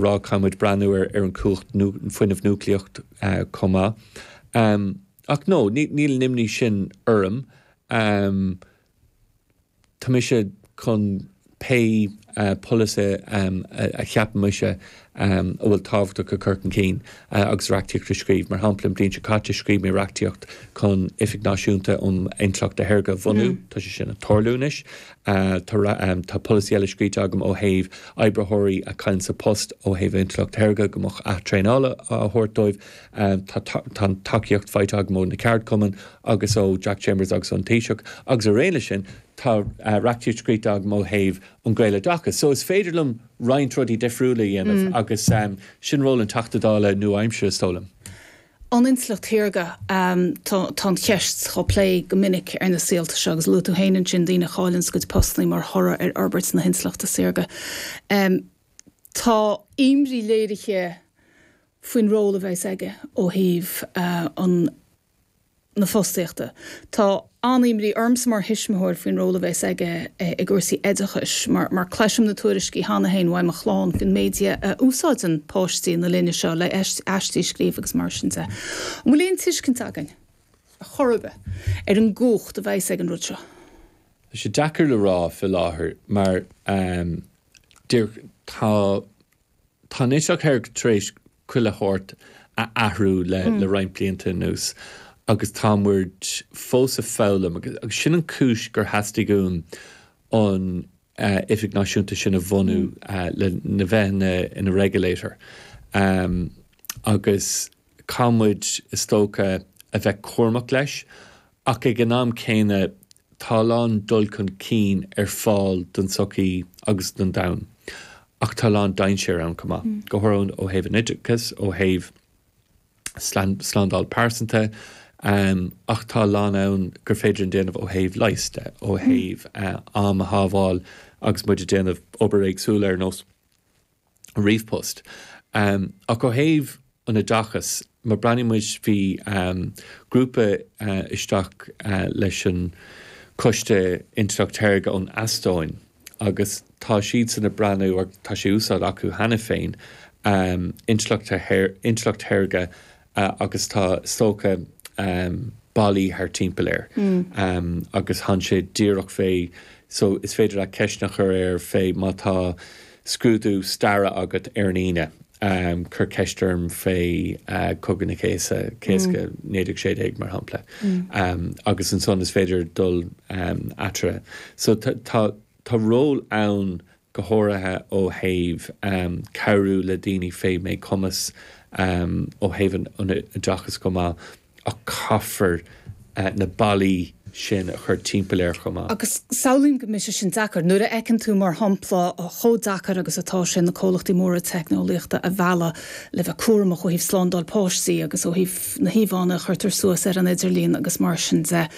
rá, caithfimid breathnú ar an chumhacht fuinnimh núicléach chomh maith. Ach no, níl an imní sin orm. Tá mise chun pé polasaí a cheapann mise a bhfuil tábhachtach a chur chun cinn agus reachtaíocht a scríobh. Mar shampla, an bhliain seo caite, scríobh mé reachtaíocht chun Oifig Náisiúnta um Intleacht Shaorga a bhunú. Tá sé sin ag tarlú anois. Tá polasaí eile scríte agam ó thaobh oibritheoirí a chailleann a bpost ó thaobh intleacht shaorga, go mbeadh athtraenáil á thabhairt dóibh. Tá an tacaíocht faighte agam ó na ceardchumainn agus ó Jack Chambers agus ón Taoiseach agus in éineacht le sin tá reachtaíocht scríte agam ó thaobh an Gaeloideachas. So is féidir liom roinnt rudaí difriúla a dhéanamh agus sin ról an Teachta Dála nua-aimseartha, is dóigh liom. Ón intleacht shaorga, tá an cheist dhá plé go minic ar na saolta seo, agus luaigh tú féin ansin daoine a chailleanns a gcuid postannaí mar thoradh ar fhorbairt na hintleachta saorga. Tá imní léirithe faoin ról a bheas aige ó thaobh an. na fostaíochta. Tá an-imní ormsa mar thuismitheoir faoin ról a bheas aige i gcúrsaí oideachais mar cloisim na tuairiscí cheana féin ó mo chlann faoin méid a úsáideann páistí na linne seo é le aistí a scríobh agus mar sin de. An bhfuil aon tuiscint againn ar chor ar bith ar an gcumhacht a bheas ag an rud seo? Tá sé deacair le rá fé láthair mar tá Tá an intleacht shaorga tar éis chuile shórt a athrú le roinnt blianta anuas agus tá muid fós ag foghlaim agus sin an chúis gur theastaigh uaim an oifig náisiúnta sin a bhunú le bheith ina regulator agus Caithfidh muid, is dócha, a bheith cúramach leis, ach ag an am céanna, tá a lán dul chun cinn ar fáil don tsochaí agus don domhan, ach tá a lán dainséar ann chomh maith, go háirithe ó thaobh an oideachas, ó thaobh slándáil pearsanta, ach tá a lán ann gur féidir a dhéanamh ó thaobh leighis de, ó thaobh am a shábháil agus muid ag déanamh obair éagsúil ar nós. ríomhpost. Ach ó thaobh an oideachas, má breathnaíonn muid, bhí grúpa isteach leis an Coiste Intleacht Shaorga ón Eastóin agus tá siadsan ag breathnú, tá sé in úsáid acu cheana féin, intleacht shaorga agus tá is dócha ballaí thart timpeall air agus téann sé díreach fé so is féidir leat ceisteanna a chur air fé má tá scrúdú staire agat ar an Aoine, cuir ceist orm fé Cogadh na Cásca, 1916 mar shampla, agus ansan is féidir dul eatarthu. So tá ról ann go háirithe ó thaobh cabhrú le daoine fé mhíchumas, ó thaobh an oideachais chomh maith, ach caithfear na ballaí sin a chur timpeall air chomh maith. Agus samhlaím go mbeidh sé sin deacair. Nuair a fheiceann tú, mar shampla, chomh deacair agus atá sé na comhlachtaí móra teicneolaíochta a mhealladh le bheith cúramach ó thaobh slándáil páistí agus ó thaobh, na híomhánna a chuirtear suas ar an idirlíon agus mar sin de.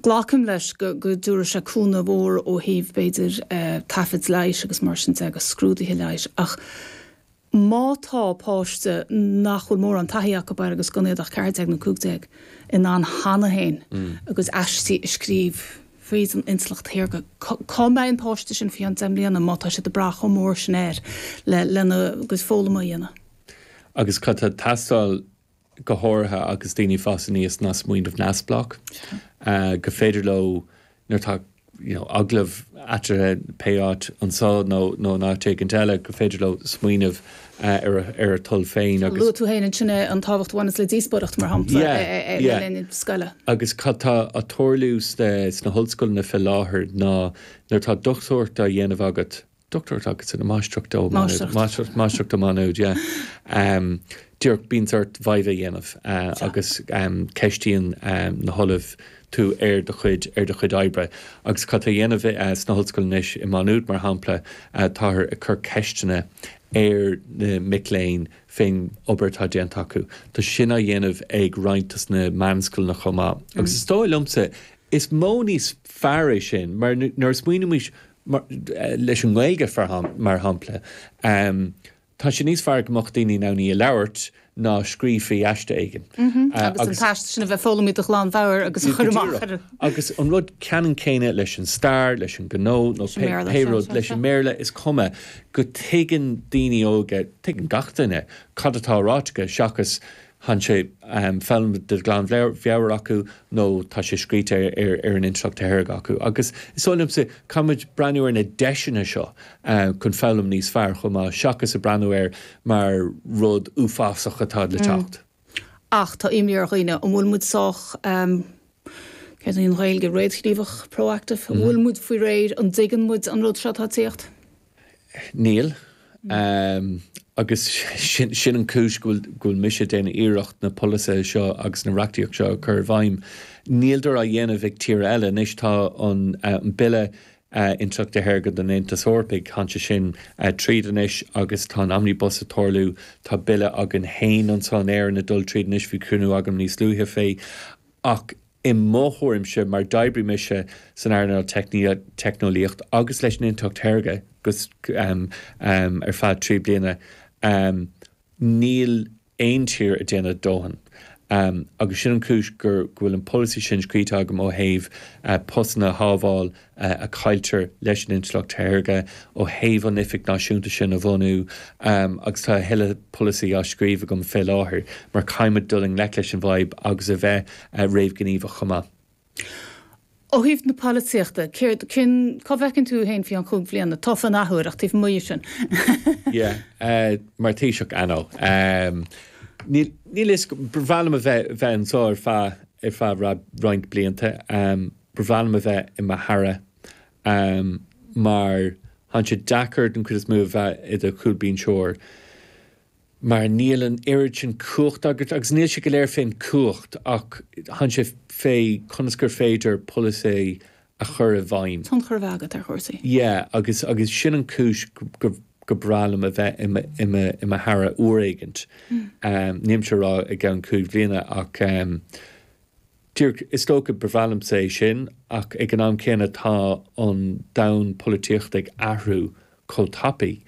Glacaim leis go dtabharfaidh sé cúnamh mór ó thaobh, b'fhéidir, taifead leighis agus mar sin de agus scrúduithe leighis, ach má tá páiste nach bhfuil mórán taithí acu air agus gan iad ach 14 nó 15 in ann cheana féin a gcuid aistí a scríobh fríd an intleacht shaorga, cá mbeidh an páiste sin faoi cheann deich mbliana má tá siad ag brath chomh mór sin air lena gcuid foghlama a dhéanamh? Agus cad tá ag teastáil go háirithe agus daoine ag fás aníos ná smaoineamh neamhspleách gur féidir leo, nuair atá you know agallamh acu, pé áit, anseo nó nó in áit éigin eile, gur féidir leo smaoineamh ar a ar a toil féin agus. Luaigh tú féin ansin é, an tábhacht a bhaineas le díospóireacht, mar shampla, yeah yeah le linn scoile. Agus cad tá ag tarlú sna sna hollscoileanna fé láthair ná nuair atá dochtúireacht á dhéanamh agat, Doctorate agus Máistreacht. Máistreacht. Máistreacht ó Mhaigh Nuad, yeah. Díreach bíonns ort viva a dhéanamh Seo. agus ceistíonn na hollaimh tú ar do chuid, ar do chuid oibre. Agus cad tá á dhéanamh sna hollscoileanna anois i Maigh Nuad, mar shampla, táthar ag cur ceisteanna ar na mic léinn fén obair atá déanta acu. Tá sin á dhéanamh ag roinnt de sna meánscoileanna chomh maith. Agus is dóigh liomsa, i bhfad níos fearr é sin, mar nuair a smaoinímse mar leis an nGaeilge, mar shampla, tá sé níos fearr go mbeadh daoine in ann í a labhairt ná a scríobh faoi aiste éigin. Agus an t-aiste sin a bheith foghlamtha de ghlanmheabhair agus a chur amach ar an. Agus an rud ceannann céanna leis an stair, leis an ngnó nó pé rud, leis an mBéarla, is cuma go tuigeann daoine óga, tuigeann gach duine, cad atá ráite acu seachas tá sé foghlamtha de ghlanmheabhair acu nó tá sé scríte ar an intleacht shaorga acu. Agus is dóigh liomsa, caithfidh muid breathnú ar na deiseanna seo chun foghlam níos fearr chomh maith seachas ag breathnú air mar rud uafásach atá le teacht. Ach tá imní ar dhaoine, an bhfuil muid sách, céard í an Ghaeilge, réadghníomhach, proactive? An bhfuil muid faoi réir, an dtuigeann muid an rud seo atá ag tíocht? Níl. Agus sin an chúis go bhfuil mise ag déanamh iarracht na polasaithe seo agus an reachtaíocht seo a chur i bhfeidhm. Níl sé á dhéanamh ag tír eile anois, tá an Bille Intleachta Saorga don Aontas Eorpach, tá sé sin tríd anois agus tá an Omnibus ag tarlú, tá Bille againn féin anso in Éirinn ag dul tríd anois, bhí cruinniú agam níos luaithe fé, ach i mo thuairimse, mar d'oibrigh mise san earnáil teicneolaíocht agus leis an intleacht shaorga ar feadh trí bliana, níl aon tír ag déanamh a dóthain. Agus sin an chúis go bhfuil an polasaí sin scríte agam ó thaobh postanna a shábháil a chailltear leis an intleacht shaorga ó thaobh an oifig náisiúnta sin a bhunú agus tá a thuilleadh polasaí á scríobh agam fé láthair mar caithfimid dul i ngleic leis an bhfadhb agus a bheith réamhghníomhach chomh maith. Ó thaobh na polaitíochta, céard, cén, cá bhfeiceann tú féin faoi cheann cúig bliana tofa an athuair ach taobh amuigh dhe sin? Yeah, mar Thaoiseach, I know. Níl, níl a fhios agam, ba bhreá liom a bheith, bheith anseo ar feadh, ar feadh roinnt blianta. Ba bhreá liom a bheith i mo Aire mar thánn sé deacair den chuid is mó a bheith i do chúlbínseoir mar níl an oiread sin cumhachta agat agus níl sé go léir fén gcumhacht ach thánn sé fé conas gur féidir polasaí a chur i bhfeidhm. tionchar a bheith agat ar chúrsaí. Yeah agus agus sin an chúis gur bhreá liom a bheith i mo Aire uair éigint. Nílimse a rá i gceann cúig bhliana ach. Díreach is dócha ba bhreá liomsa é sin, ach ag an am céanna tá an domhan polaitíochta ag athrú chomh tapaidh.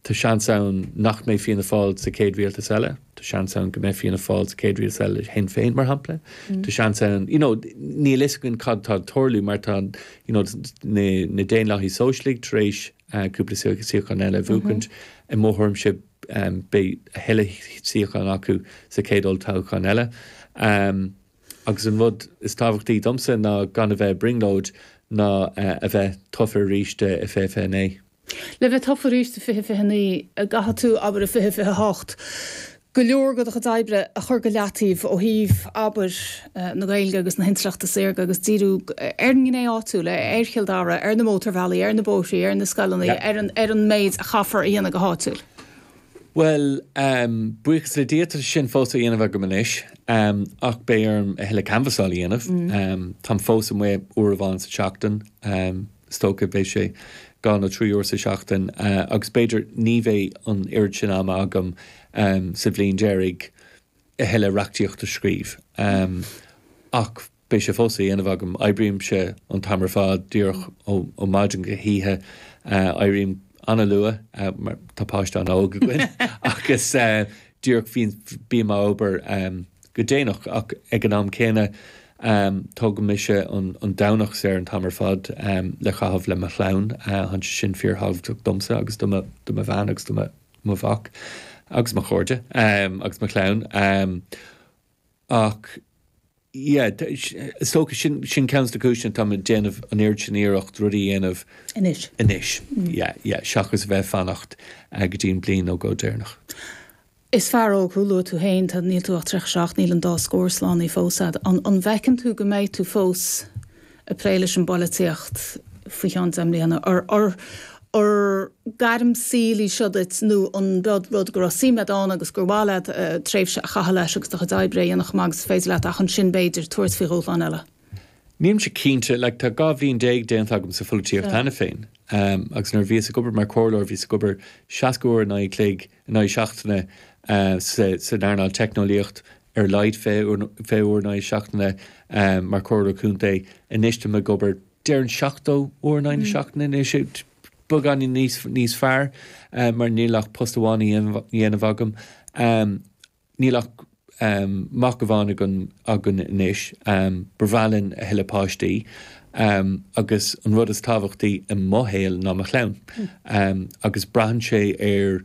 Tá seans ann nach mbeidh Fianna Fáil sa chéad rialtas eile. Tá seans ann go mbeidh Fianna Fáil sa chéad rialtas eile le Sinn Féin, mar shampla. Tá seans ann, you know, níl a fhios againn cad tá ag tarlú mar tá, you know, na Daonlathaigh Sóisialaigh tar éis cúpla suíochán eile a bhuachaint. I mo thuairimse beidh a thuilleadh suíochán acu sa chéad olltoghchán eile. Agus an rud is tábhachtaí domsa ná gan a bheith i brionglóid ná a bheith tofa arís i 2029. Le bheith tofa arís i 2029, caithfidh tú, abair, i 2028, go leor de do chuid oibre a chur go leataobh ó thaobh, abair, na Gaeilge agus na hintleachta saorga agus díriú ar an ngné áitiúil, ar Chill Dara, ar na mótarbhealaí, ar na bóithre, ar na scoileannaí, ar an méid a chaithfear a dhéanamh go háitiúil. Bhuel, buíochas le Dia, tá sin fós á dhéanamh agam anois ach beidh orm a thuilleadh canbhasáil a dhéanamh. Táim fós amuigh uair amháin sa tseachtain, is dócha, beidh sé dhá nó trí uair sa tseachtain agus b'fhéidir ní bheidh an oiread sin ama agam sa bhliain deiridh. a thuilleadh reachtaíocht a scríobh. Ach beidh sé fós á dhéanamh agam. Oibrímse an t-am ar fad, díreach ó mhaidin go hoíche. Éirím an-luath mar tá páiste an-óg againn agus díreach bím ag obair go déanach. Ach ag an am céanna, tógaimse an Domhnach saor an t-am ar fad le caitheamh le mo chlann. Tá sé sin fíorthábhachtach domsa agus do mo bhean agus do mo. mo mhac agus mo chairde agus mo chlann ach yeah is dócha sin sin ceann de na cúiseanna tá mé ag déanamh an oiread sin iarracht rud a dhéanamh anois anois yeah yeah seachas a bheith ag fanacht eh, go dtí an bhliain nó dhó deireanach. Is fear óg thú, luaigh tú féin, tá níl tú ach 37, níl an dá scór slán fós agat. An bhfeiceann tú go mbeidh tú fós ag plé leis an bpolaitíocht faoi cheann deich mbliana, ar gairm saoil í seo duit nó an rud go raibh suim leat ann agus gur mhaith leat tréimhse a chaitheamh leis agus do chuid oibre a dhéanamh chomh maith agus is féidir leat ach ansin, b'fhéidir, tabhairt faoi dhúshlán eile? Nílimse cinnte. Like, tá dhá bhliain déag déanta agam sa pholaitíocht cheana féin agus nuair a bhíos ag obair mar chomhairleoir, bhíos ag obair seasca uair in aghaidh an chloig, in aghaidh seachtaine san earnáil teicneolaíocht ar a laghad fiche uair in aghaidh seachtaine mar chomhairleoir contae anois tá mé ag obair déarfainn seachtó uair in aghaidh na seachtaine anois beagáinín níos níos fearr mar níl ach post amháin á dhéanamh agam níl ach mac amháin againn againn anois ba bhreá linn a thuilleadh páistí agus an rud is tábhachtaí i mo shaol ná mo chlann agus braitheann sé ar